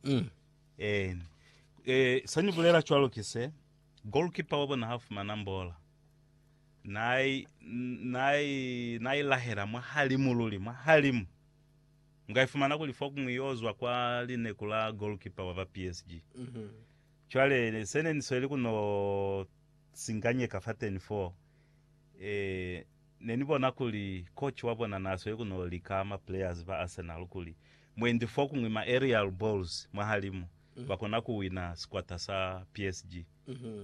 Mm. Eh, eh, sa ni bulela cwalo ki se, goalkeeper wa bona ha fumana mbola, na i, na i, na i lahela mwa halimu luli, mwa halimu. Nga i fumana kuli fokuñwi yo zwa kwa lineku la goalkeeper wa ba PSG. Mhm. Cwale ne- se ne ni sweli ku no singanyeka fateni foo, eh, Ne ni bona kuli coach wa bona n'a sweli ku n'o lika ma players ba Arsenal kuli mwendi fokuñwi ma aerial balls mwahalimu ba kona ku wina sikwata sa PSG.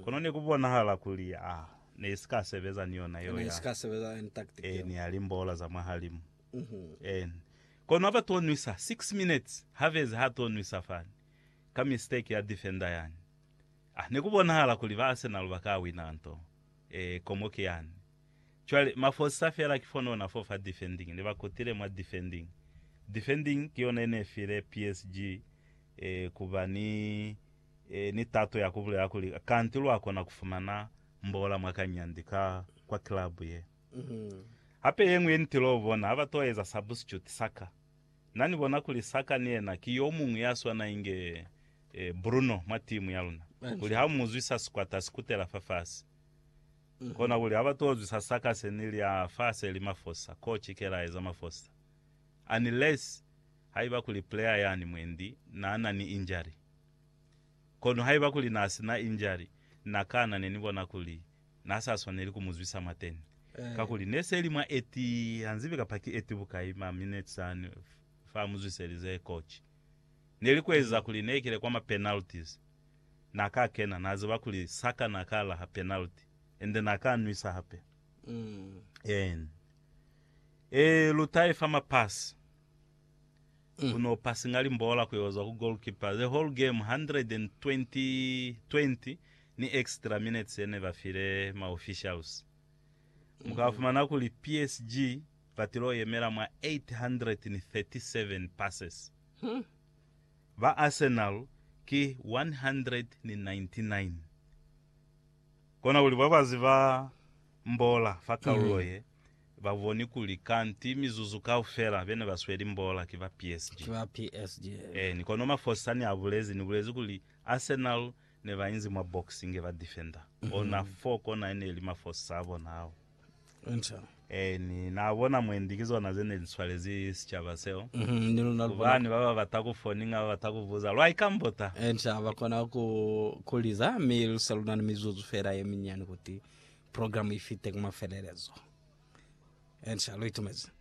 Kono ne ku bonahala kuli a ne si ka sebeza ni yona yeo ya e ni ya limbola za mwahalimu. En kono ha ba t'o nwisa six minutes, Havertz h'a t'o nwisa fani ka mistake ya defender yani. A ne ku bonahala kuli ba Arsenal ba ka wina nto. E komo ki yani. Cwale, mafosa fela ki fone ona fo fa defending, ne ba kutile mwa defending. Defending ki yona yene file PSG eh, ku ba ni, eh, ni tato ya ku bulela kuli, Kanti lwa kona ku fumana mbola mwa kanyandi ka kwa club ye. Hape yeñwi ye nitile u bona, ha ba to eza substitute, Saka. Na ni bona kuli Saka ni yena ki yo muñwi ya swana inge, eh, Bruno mwa timu ya luna, kuli ha u mu zwisa sikwata, si kutela fa fasi. Konakuli ha ba tozwi sa sakase ni lya fa se li mafosa, koci ke la eza mafosa. Unless haiba kuli player yani mwendi na na ni injury. Kono haiba kuli na si na injury, na kana ne ni bona kuli na sa swaneli ku mu zwisa mateni. Kakuli ne se li mwa 80, ha nzibi kapa ki 80 bukai ma minutes ani fa mu zwiselize koci. Ne li ku eza kuli ne kile kwa ma penalties, Na ka kena, na ziba kuli Saka na ka laha penalty, ende na ka nwisa hape. Eeni. Ee, lu ta ifa mapasi. Ku no passinga limbola ku yo zwa ku goalkeeper, the whole game, 120 ni extra minutes ye ne ba file ma officials. Mu ka fumana kuli PSG ba tilo yemela mwa 837 passes. Ba Arsenal ki 199. Kona kuli babazi ba mbola fa kaulo ye ba boni kuli kanti mizuzu kaufela bene ba sweli mbola ki ba PSG. Ki ba PSG. Eeni, kono mafosa ne a bulezi, ni bulezi kuli Arsenal ne ba inzi mwa box inge ba defender ona fo kona e ne li mafosa a bona ao. Enter. Ee, ni na bona mwendi ki zona ze ne li swalezi sicaba seo. Mhm, ni luna lu bona. Kubani ba ba bata ku foninga ba bata ku buza, lwa ikambota. Enter, ba kona ku, ku liza, mi lu se lu na ni mizuzu feela ye minyani kuti programu i fite ku mafelelezo. Enter, lu itumezi.